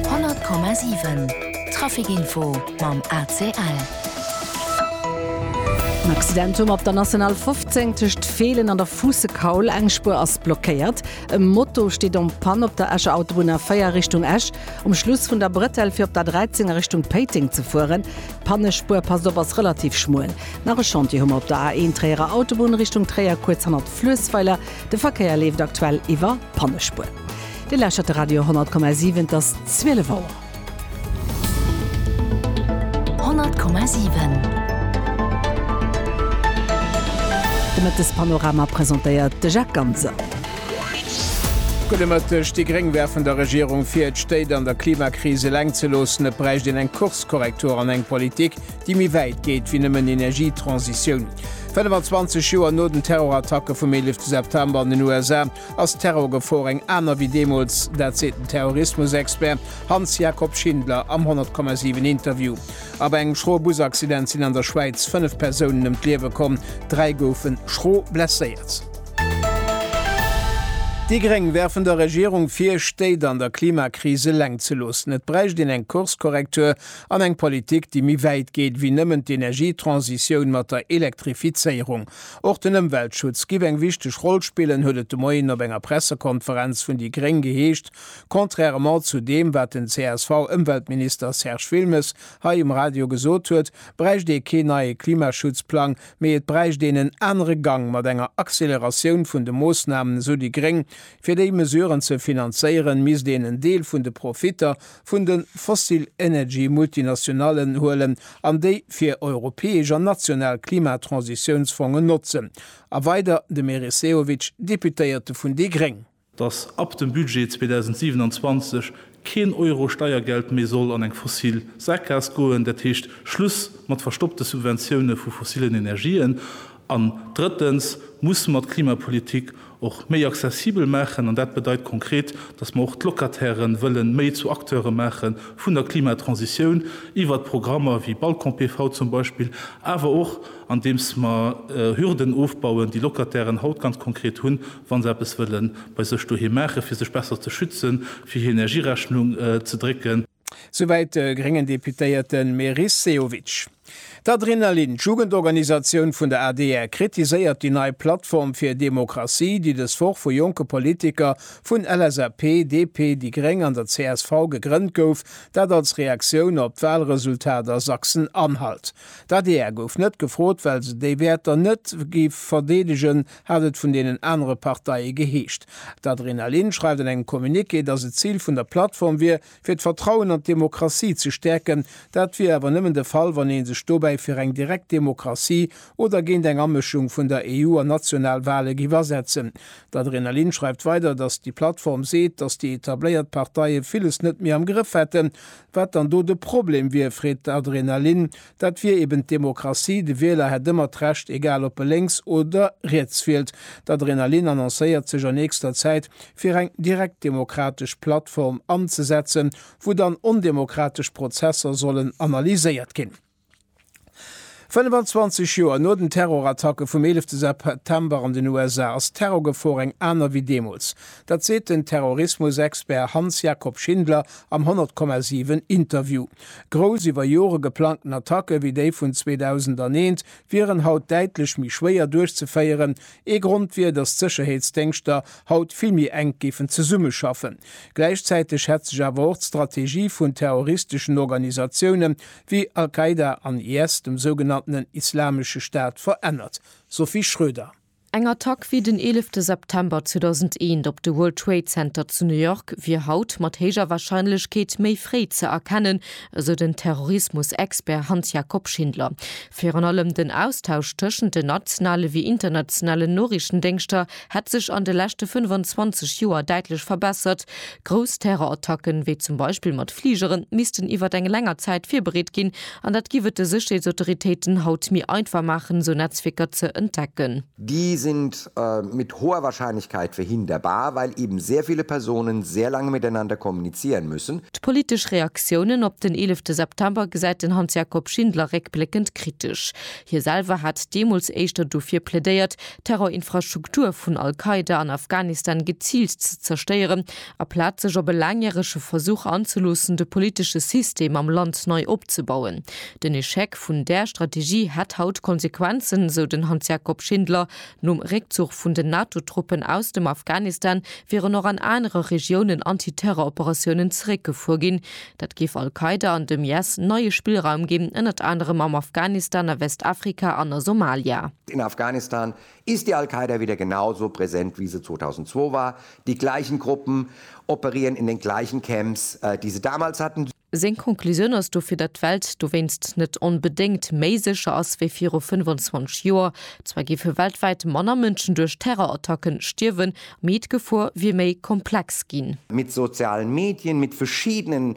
100,7 Trafic Info mam ACL. En Accident um op der National 15 tëscht Feelen an der Fuussekaul. Eng Spuer ass blockéiert. E Moto steet en Panne op der Escher Autobunn A4 Richtung Esch, um Schluss vun der Bretelle fir op d'A13 a Richtung Péiteng ze fueren. D'Pannespuer, passt op, ass relativ schmuel. Nach e Chantier hu mer op der A1 Tréierer Autobunn Richtung Tréier, kuerz hannert Fluessweiler. De Verkéier leeft aktuell iwwer Pannespuer. Dir lauschtert de Radio 10,7, et ass 12 Auer. 10,7 De Mëttespanorama presentéiert de Jacques Ganser. Gudde Mëtteg, Déi Gréng werfen der Regierung vir, d'Stéit an der Klimakris eleng ze loossen. Et bräicht een eng Kurskorrektur an eng Politik, déi méi wäit geet wéi nëmmen Energietransitioun. 25 Joer no den Terrorattacke vum 11 September an den USA Ass d'Terrorgefor eng aner wéi deemools? Dat seet den Terrorismus-Expert Hans-Jakob Schindler am 100,7 Interview. A bei engem schroe Busaccident sinn an der Schwäiz fënnef Persounen ëm d'Liewe komm, dräi goufe schro blesséiert. Déi Gréng werfen der Regierung vir, Stéit an der Klimakris eleng ze loossen. Et bräicht een eng Kurskorrektur an eng Politik, déi méi wäit geet wéi nëmmen d'Energietransitioun mat der Elektrifizéierung. Och den Ëmweltschutz giff eng wichteg Roll spillen, huet et de Moien op enger Pressekonferenz vun déi Gréng geheescht, contrairement zu deem, wat den CSV-Ëmweltminister Serge Wilmes hei um Radio gesot huet, bräicht ee keen neie Klimaschutzplang, mee et bräicht een en anere Gang mat enger Acceleratioun vun de Moossnamen, esou déi Gréng. Fir déi Mesuren ze finanzéieren, misst een en Deel vun de Profitter vun de fossil energy Multinationallen huelen an déi fir europäesch an national Klimatransitiounsfongen notzen. A weider de Meris Sehovic, Deputéierte vun déi gréng. datt ab dem Budget 2027 keen Euro Steiergeld méi soll an eng fossil Sackgaass goen, dat heescht Schluss mat verstoppte Subventioune vu fossilen Energien. An drëttens musse mer d'Klimapolitik och méi accessibel maachen, an dat bedeit konkret, dass mer och d'Locataire wëlle méi zu Acteure maache vun der Klimatransitioun, iwwert Programmer wéi Balcon-PV zum Beispill, awer och andeems mer Hürden ofbauen, déi Locatairen haut ganz konkret hunn, wa se eppes wëlle bei sech doheem maachen, fir sech besser ze schützen, fir hir Energierechnung ze drécken. Souwäit de gréngen Deputéierte Meris Sehovic. D'Adrenalin, d'Jugendorganisatioun vun der adr, kritiséiert déi nei Plattform fir Demokratie, déi dës Woch vu jonke Politiker vun LSAP, DP, déi gréng an der csv gegrënnt gouf, dat als Reaktioun op d'Walresultat a Sachsen-Anhalt. D'adr gouf net gefrot, well se déi Wäerter net gi verdeedegen, hat et vun deenen anere Parteie geheescht. D'Adrenalin schreift an engem Communiqué, datt et d'Zil vun der Plattform wier, fir d'Vertrauen an d'Demokratie ze stäerken. Dat wier awer nëmmen de Fall, wann ee sech dobäi fir eng direkt Demokratie oder géint eng Amëschung vun der EU an national Wale géif asetzen. D'Adrenalin schreift weider, datt déi Plattform seet, datt déi etabléiert Parteie villes net méi am Grëff hätten. Wat dann do de Problem wier, freet d'Adrenalin. Dat wier eben d'Demokratie, de Wieler hätt ëmmer d'Recht, egal ob e lénks oder riets wielt. D'Adrenalin annoncéiert sech an nächster Zäit, fir eng direktdemokratesch Plattform anzesetzen, wou dann ondemokratesch Prozesser sollen analyséiert ginn. 25 Joer no den Terrorattacke vum 11 September an den USA ass d'Terrorgefor eng aner wéi deemools. Dat seet den Terrorismusexpert Hans-Jakob Schindler am 100,7 Interview. Grouss iwwer Jore geplangten Attacke wéi déi vun 2001 wieren haut däitlech méi schwéier duerchzeféieren. Ee Grond wier, datt d'Sécherheetsdéngschter haut vill méi enk géifen zesummeschaffen. Gläichzäiteg hätt sech awer och d'Strategie vun terroristeschen Organisatioune wéi Al-Qaida an IS, dem sougenannten Islamesche Staat, verännert. Sophie Schröder. Eng Attack wéi den eelefte September 2001 op de World Trade Center zu New York wier haut mat héijer Warscheinlechkeet méi fréi ze erkennen, esou den Terrorismus-Expert Hans-Jakob Schindler. Virun allem den Austausch tëschent den nationale wéi internationalen Noriichtendéngschter hätt sech an de leschte 25 Joer däitlech verbessert. Grouss Terrorattacken, wéi zum Beispill mat Fligeren, missten iwwer eng länger Zäit virbereet ginn An dat giff et de Sécherheetsautoritéiten haut méi einfach maachen, esou Netzwierker ze entdecken. Die sind mit hoher Wahrscheinlichkeit verhinderbar, weil eben sehr viele Personen sehr lange miteinander kommunizieren müssen. D'politesch Reaktiounen op den eelefte September gesäit den Hans-Jakob Schindler réckbléckend kritesch. Hie selwer hat deemools éischter dofir plädéiert, d'Terrorinfrastruktur vun Al-Qaida an Afghanistan geziilt ze zerstéieren, Aplaz sech op e laangjärege Versuch anzeloossen, de politesche System am Land nei opzebauen. Den Echec vun där Strategie hätt haut Konsequenzen, esou den Hans-Jakob Schindler. Nom Réckzuch vun den NATO-Truppen aus dem Afghanistan wieren och an anere Regiounen Anti-Terror-Operatiounen zeréckgefuer ginn. Dat géif Al-Qaida an dem IS neie Spillraum ginn, ënnert anerem am Afghanistan, a Westafrika an a Somalia. Den Afghanistan Ist die Al-Qaida wieder genau so präsent wie se 2002 war? Die gleichen Gruppen operieren in den gleichen Camps, die se damals hatten? Seng Conclusioun ass dofir, datt d'Welt dowéinst net onbedéngt méi sécher ass wéi viru 25 Joer. Zwar géife weltwäit manner Mënschen duerch Terrorattacken stierwen, mee d'Gefor wier méi komplex ginn. Mit sozialen Medien, mit verschiddenen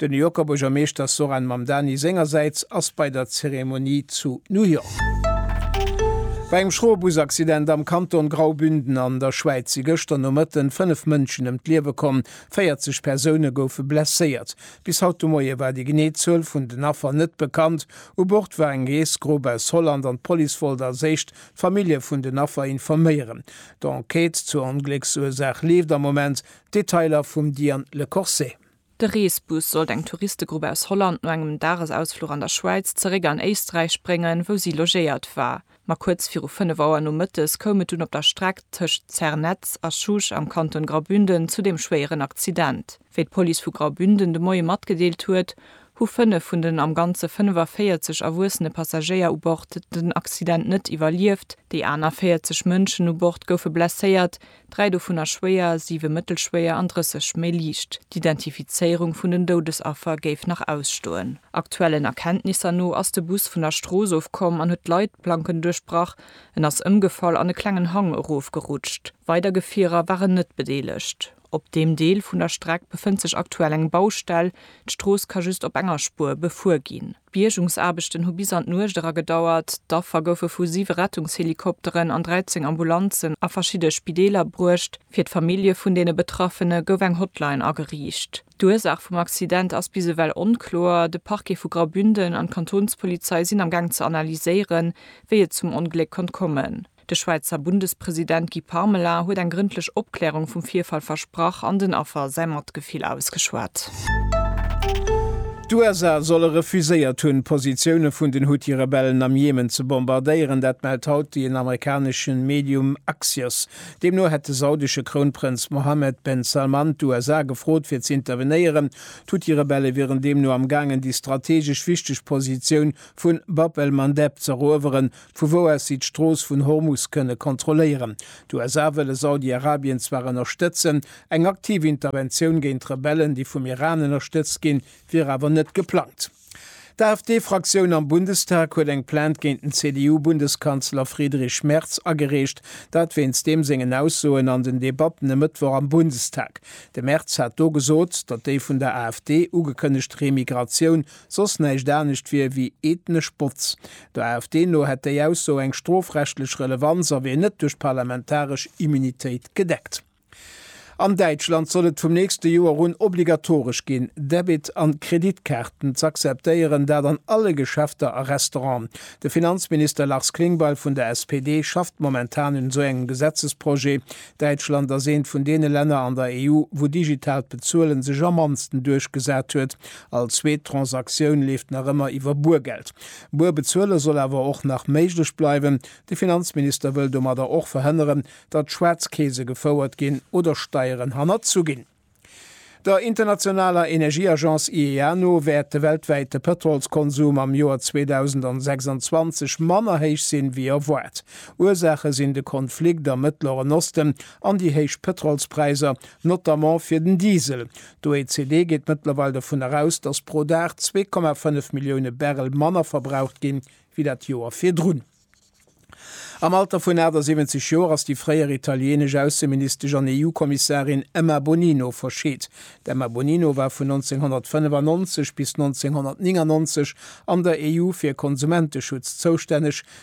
De New Yorker Buergermeeschter Zohran Mamdani sengersäits ass bei der Zeremonie zu New York. Bei engem schroe Busaccident am Kanton Graubünden an der Schwäiz si gëschter Nomëtten 5 Mënschen ëm d'Liewe komm, 40 Persoune goufe blesséiert. Bis haut de Moie war déi genee Zuel vun den Affer net bekannt. U Bord war eng Reesgrupp aus Holland an d'Police wollt als éischt d'Famillje vun den Affer informéieren. D'Enquête zur Onglécksursaach leeft am Moment. Detailer vum Diane Lecorsais. De Reesbus sollt eng Touristegrupp aus Holland no engem Dagesausfluch an der Schwäiz zeréck an Éisträich bréngen, wou si logéiert war. Ma kuerz viru 5 Auer nomëttes koum et dunn op der Streck tëscht Zernez a Schusch am Kanton Graubünden zu deem schwéieren Accident. Wéi d'Police vu Graubünden de Moie matgedeelt huet, hu 5 vun den am Ganze 45 erwuessene Passagéier u Bord den Accident net iwwerlieft. Déi aner 40 Mënschen u Bord goufe blesséiert, dräi dovunner schwéier, siwe mëttelschwéier an 30 méi liicht. D'Identifizéierung vun den Doudesaffer géif nach ausstoen. Aktuellen Erkenntnisser no ass de Bus vun der Strooss of komm an huet d'Leitplanken duerchbrach. En ass ëmgefall an e klengen Hang erofgerutscht. Weider Gefierer waren net bedeelegt. Op deem Deel vun der Streck befënnt sech aktuell eng Baustell. D'Strooss ka just op enger Spuer befuer ginn. D'Biergungsaarbechten hu bis an d'Nuecht era gedauert. D'Affer goufe vu siwe Rettungshelikopteren an 13 Ambulanzen a verschidde Spideeler bruecht. Fir d'Famillje vun deene Betraffene gouf eng Hotline ageriicht. D'Ursaach vum Accident ass bis ewell onkloer. De Parquet vu Graubünden an d'Kantonspolizei sinn am Gaang ze analyséieren, wéi et zum Ongléck konnt kommen. De Schwäizer Bundespresident Guy Parmelin huet eng grëndlech Opklärung vum Virfall versprach an den Affer säi Matgefill ausgeschwat. D'USA solle refuséiert hunn, d'Positioune vun den Huthi-Rebellen am Jemen ze bombardéieren. Dat mellt haut den amerikanesche Medium Axios. Deemno hätt de saudesche Krounprënz Mohammed ben Salman d'USA gefrot, fir ze intervenéieren. D'Huthi-Rebelle wieren deemno am gaangen, déi strateegesch wichteg Positioun vu Bab el-Mandeb z'erueweren, vu wou aus si d'Strooss vun Hormus kënne kontrolléieren. D'USA wëlle Saudi-Arabien zwar ënnerstëtzen, eng aktiv Interventioun géint d'Rebellen, déi vum Iran ënnerstëtzt ginn, wier awer net geplangt. D'AfD-Fraktioun am Bundestag huet eng Plainte géint den CDU-Bundeskanzler Friedrich Merz agereecht, dat wéinst deem sengen Aussoen an den Debatten e Mëttwoch am Bundestag. De Merz hat do gesot, datt déi vun der AfD ugekënnegt Remigratioun soss näischt anescht wier wéi ethnesch Botz. Der AfD no hätt déi Ausso eng strofrechtlech Relevanz a wier net duerch d'parlamentaresch Immunitéit gedeckt. An Däitschland soll et vum nächste Joer un obligatoresch ginn, Debit an Kreditkaarten z'akzeptéieren, dat an alle Geschäfter a Restauranten. De Finanzminister Lars Klingbeil vun der SPD schafft momentan un esou engem Gesetzesprojet. Däitschland ass eent vun deene Länner an der EU, wou digitaalt Bezuelen sech am mannsten duerchgesat huet. All zweet Transaktioun leeft nach ëmmer iwwer Buergeld. Buer bezuele soll awer och nach méiglech bleiwen. De Finanzminister wëll domadder och verhënneren, datt Schwaarzkeese gefouert ginn oder Steieren hannerzu ginn. Der internationaler Energieagence IEA no wäert de weltwäite Pëtrolskonsum am Joer 2026 manner héich sinn, wéi erwaart. Ursaache sinn de Konflikt am Mëttleren Osten an déi héich Pëtrolspräisser, notamment fir den Diesel. D'OECD geet mëttlerweil dovun eraus, datt pro Dag zwee Komma fënnef Millioune Barrel manner verbraucht ginn, wéi dat Joer virdrun. Am Alter vun 78 Joer ass déi fréier italieenesch Ausseministesch an EU-Kommissarin Emma Bonino verscheet. D'Emma Bonino war vun 1995 bis 1999 an der EU fir Konsumenteschutz zoustänneg,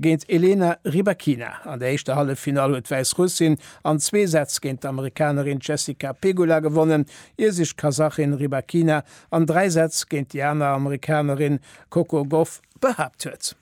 Géint Elena Rybakina an der éischter Halleffinall huet d'Wäissrussin an zwee Sätz géint d'Amerikanerin Jessica Pegula gewonnen, ier sech d'Kasachin Rybakina an dräi Sätz géint déi aner Amerikanerin Coco Gauff behaapt huet.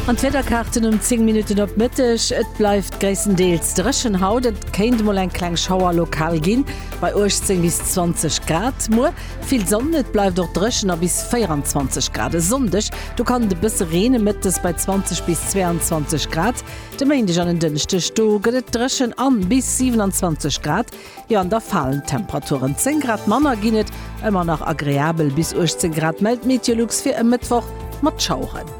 An d'Wiederkaarten um 10 Minutten op Mëtteg, Et bleift gréisstendeels dréchen haut, et kéint mol eng kleng Schauer lokal ginn, bei 18 bis 20 Grad. Muer Vill Sonn, et bleift och dréchen a bis 24 Grad. E Sonndeg, do kann et e bësse reenen, mëttes bei 20 bis 22 Grad. De Méindeg an en Dënschdeg, do gëtt et dréchen a bis 27 Grad, jo an da falen d'Temperaturen. 10 Grad manner ginn et, ëmmer nach agreabel bis 18 Grad, mellt d'Meteolux fir e Mëttwoch mat Schaueren.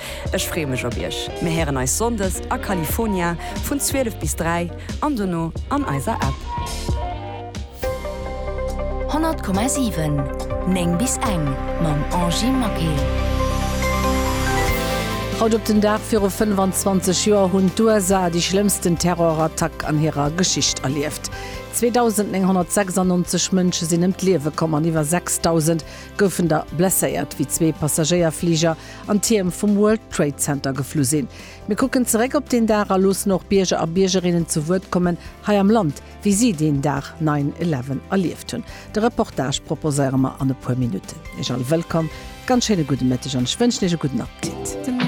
Ech free mech op iech. Mir héieren eis Sonndes a California vun 12 bis 3 an dono an eiser App. 100,7 9 bis eng mam Angie Maquet. Haut op den Dag viru 25 Joer hunn d'USA déi schlëmmsten Terrorattack an hirer Geschicht erlieft. 2.996 Mënsche sinn ëm d'Liewe komm an iwwer 6.000 goufen der blesséiert, wéi zwee Passagéierfliger an d'Tierm vum World Trade Center geflu sinn. Mir kucken zeréck op deen Dag a loossen och Bierger a Biergerinnen zu Wuert kommen hei am Land, wéi si deen Dag Nine Eleven erlieft hunn. De Reportage proposéiere mer an e puer Minutten. Iech all wëllkomm, ganz schéine gudde Mëtteg an ech wënschen Iech e gudden Appetit.